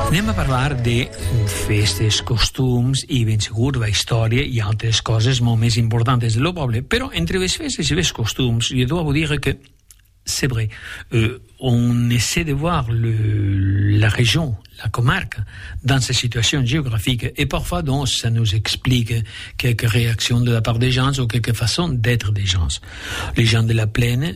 Anem a parlar de festes, costums i ben segur de la història i altres coses molt més importantes de lo poble, però entre les festes i les costums, jo dois vous dire que c'est vrai, euh, on essaie de voir le, la région, la comarque, dans sa situation géographique et parfois donc ça nous explique quelques réactions de la part des gens ou quelques façons d'être des gens. Les gens de la plaine,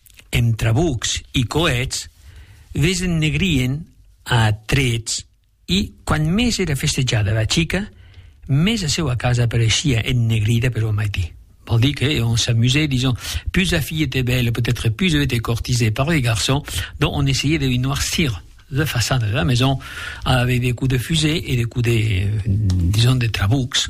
Emb trabucs i coets, les ennegrien a trets i, quan mes era festejada era chica, mes a seua casa apareishia ennegrida per ua maití. Vol dir que on s'amusait, dison, pus la fille était belle, peut-être pus elle était courtisée par les garçons, donc on essayait de lui noircir la façana de la maison, avec des coups de fusée et des coups de, dison, de trabucs,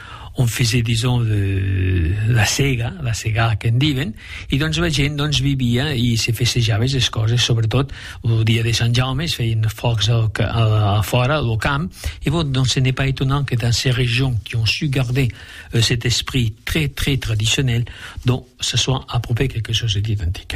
on faisait dison la sega, la segar qu'en diuen, i doncs la gent doncs, vivia i se festejava les coses, sobretot el dia de Sant Jaume es feien focs al, a, a fora, al camp, i bon, doncs ce n'est pas étonnant que dans ces régions qui ont su garder euh, cet esprit très très traditionnel, donc ça soit approprié quelque chose d'identique.